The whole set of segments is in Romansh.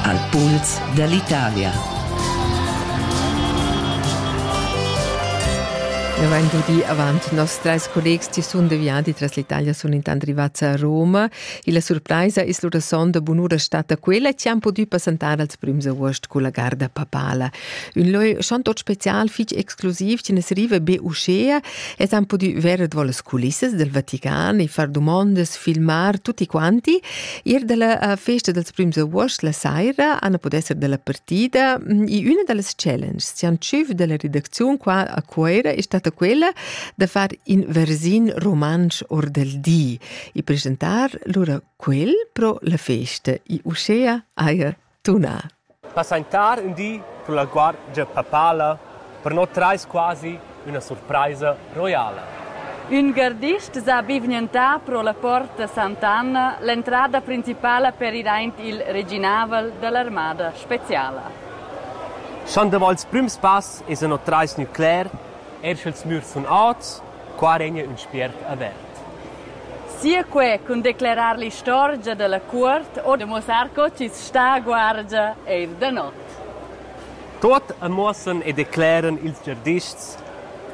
Al puls dall'Italia. Nous avain dudi avant nos trais collegs chi sun deviati tras l'Italia sun intant rivats a Roma. Illa surpraisa es lura son da bunura stata quella chi han pudü passantar als prüms august culla garda papala. Ün lö schon tot special fich exclusiv chi nes riva be uschea es han pudü verer davo las culissas del Vatican e far dumondas, filmar tutti quanti Ir dalla festa dels prüms august la saira han pudè esser dalla partida. E üna da las challenges chi han tschüf dalla redacziun qua a Cuoira è stata quella da far in versin romansch or del di e presentar lura quel pro la festa. E uschea haja tuna. Passentar ün di cun la guardgia papala per no trais quasi üna surpraisa roiala. Ün gardist s'ha bivgnantà pro la porta Sant'Anna, l'entrada principala per ir aint il reginavel da l'armada speciala. Sch'an davo ils prüms pass esa no trais nücler Eir sch'ils mürs sun ots, qua regna ün spiert avert. Sia que cun declerar l'istorgia da la cuort o da muossar co chi's sta a guardia eir da not. Tuot am muossan e decleran ils giardists,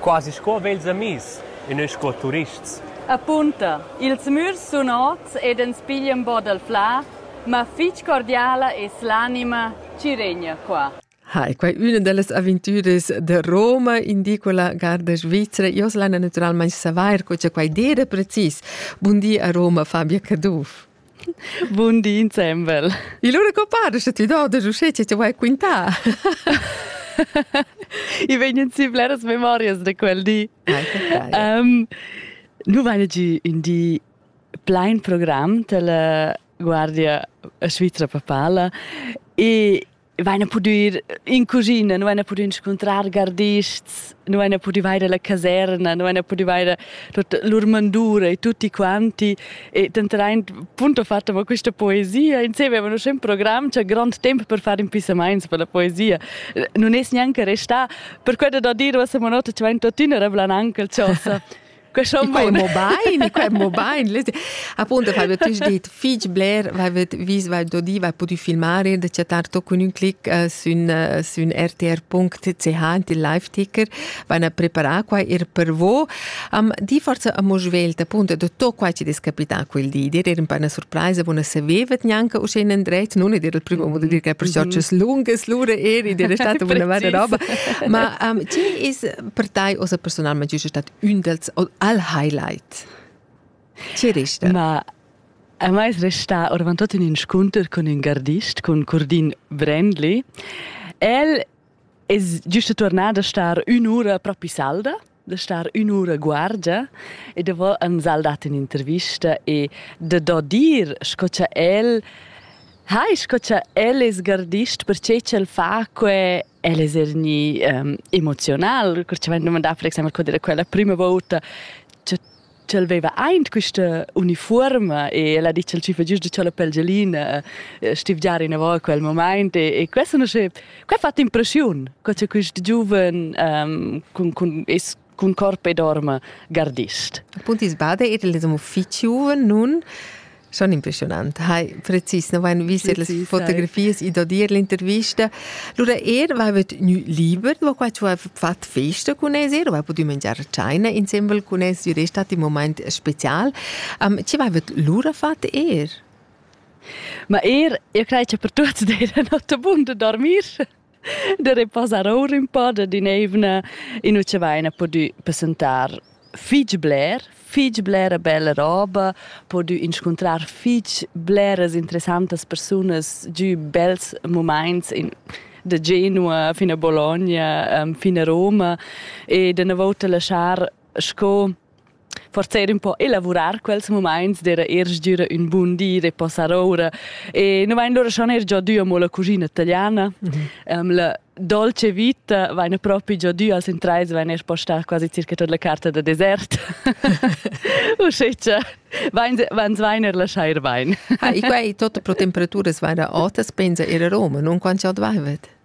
quasi sco vels amis e nus sco turists. Apunta, ils mürs sun ots ed ans piglian bod al flà, ma fich cordiala es l'anima chi regna qua. Ha, è quai üna da las aventüras da Roma, indico la garda svizra. Io lana naturalmain savair co cha quai dera precis. Bun di a Roma, Fabia Caduff. Bun di insembel. E allora co pare che ti do da uscì che ti vuoi quintà? I vegnan si bleras memorias da quel di. Ah, um, nu vaina giu un di plain program della Guardia Svizra Papala e vaina pudü in cuschina, nu vaina pudü inscuntrar gardists, nu vaina pudü vaire la caserna, nu vaina pudü vaire tuot lur mandura e tutti quanti. E tanteraint, punto fatto, ma questa poesia, insieme avevano un programm, c'è grande tempo per fare impissamaints per la poesia. Non es neanche restà, per quello da dire, questa notte ci va in tuttina, reblan anche il ciosa. Quai mo bain, quai mo bain. Appunto, aveva tu detto fich bler, aveva vis, vai dodi, vai pudi filmare e da chattar to con un clic uh, sün, uh, sün rtr.ch il live ticker, vanno a preparare qua ir per vo. Um, di forse a mo svelt, appunto, da to qua ci des capità quel di, dir era un po' una sorpresa, buona sapevet neanche uscire indret, non è il primo modo di dire che per ciocce lunghe, lure eri, dir è stata una vera roba, ma um, ci is per te, osa personalmente, c'è stato Ün dels al highlight. Chi resta? Ma a mai es restà oravantut ün inscunter cun ün gardist, cun Curdin Brendli. El es giüsta tuornà da star ün'ura propi salda, da star ün'ura guargia e davo ans ha'l dat ün'intervista e da do dir sco cha el hai sco cha el es gardist perche ch'el fa que El es er gnì um, emoziunal, cur cha m'han dumandà per exaimpel co dir quella prima volta ch'el veva aint quista unifuorma e el ha dit ch'el ci fa giusto cha la pelgelina eh, stivgiar inavò a quel moment e, e questa non sche, quai ha fatto impressiun, co cha quist giuven um, cun, cun, es cun corp e dorma gardist. Appunti sbada era il uffici nun Schon impressionant. Hai precis, no vain vist las fotografias i da dir l'intervista. Lura er vaiva gnü liber, va qua ci vaiva fat festa cun es er, vai pudü mangiar tschaina insembel cun es, düre stat in moment special. Um, ci vaiva lura fat er? Ma er, io crei che per tutti dera not abunde dormir. da reposar our ün po da din'eivna in ucha vaina pudü passentar fich bler, fich blera bella roba, pudü inscuntrar fich bleras interessantas persunas giü bels mumaints in da Genua fin a Bologna, fin a Roma e da na vouta laschar sco forza er un po elavurar quels moments d'era er sdüra un bun di de passar ora e nu vain lura schon er già dü amo la cuschina italiana mm -hmm. um, la dolce vita vaina propi già dü als intrais vain er postar quasi circa tot la carta da desert usceccia vans vain er lasciar ir bain ha e quai tot pro temperaturas vaina otas pensa er a Roma non quant già dvaivet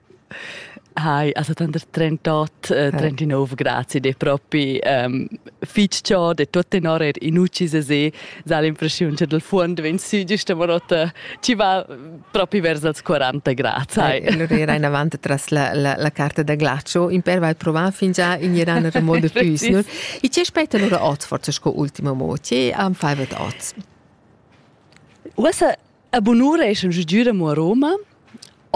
Hai, also tanter 38 e 39 grazi de propi um, fich ciò de tuot tenor er in ucis a se, sa l'impressiun che dal fuond vegn sü giusta morota ci va propi vers als 40 grazi. Hai, allora era in avanti tras la, la, la carta da glascio, in per vai provare fingià in iran remodo tüsnur. E ce aspetta allora oz forse sco ultima moce am faivet oz? Usa A bunura eschan giu giu amo a Roma.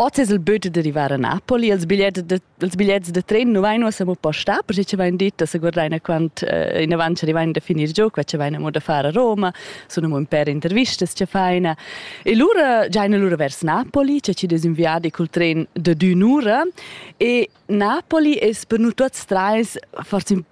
Oz es il budget d'arrivar a Napoli. Els bigliettes de, els bigliettes de tren nu vain uossa amo postà, perche ci vain dit da se guardaina quant eh, inavant ci arrivain da finir giò, qua ci vain amo da far a Roma, sun amo ün pêr intervistas ci faina. E lura giaina lura vers Napoli, c'è ci desinviadi col tren da d'ün'ura e Napoli es per nu tuots trais forse ün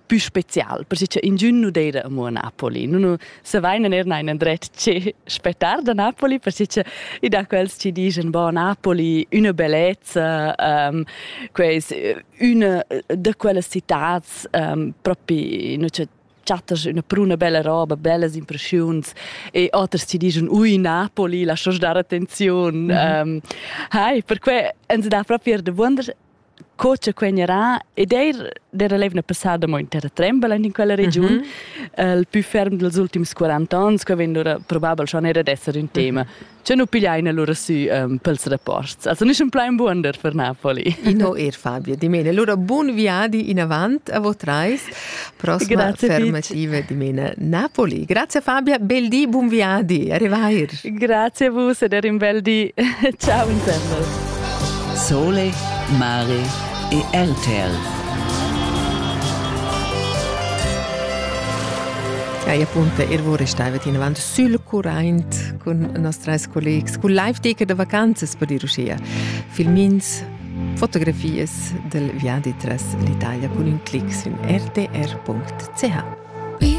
più special, per che ingün nu d'eira amo a Napoli. Nun savein er neir endret che spettar da Napoli, per che i da quels ci digen, bon, Napoli üna bellezza, um, quais üna da quelles citats um, propi, nu c'è chattas üna pruna bella roba, bellas impressiuns e oters ci digen, ui, Napoli, lascia's dar attenziun. Mm -hmm. um, hai, perque ens dà propi er de wunder co che quegn era ed eir d'era l'eivna passada mo in terra trembel in quella regiun mm -hmm. il più ferm dels ultims 40 ans che vegn ora probabel schon era d'esser un tema che nu pigliaina lura sü um, pels rapports also nüsch un plain buonder per Napoli no er Fabio di mene lura bun viadi in avant a vos trais Prossima fermativa dimena Napoli. Grazie Fabia, bel di, buon viadi, arrivair. Grazie a vus ed un bel di. Ciao insemble. Sole, mare e RTL. Ja, appunto, ihr wurde steivet in avant sul current con nostres collegs, con live ticket de vacanzas per dir uschia. Filmins Fotografias dal viadi tras l'Italia cun ün clic sün rtr.ch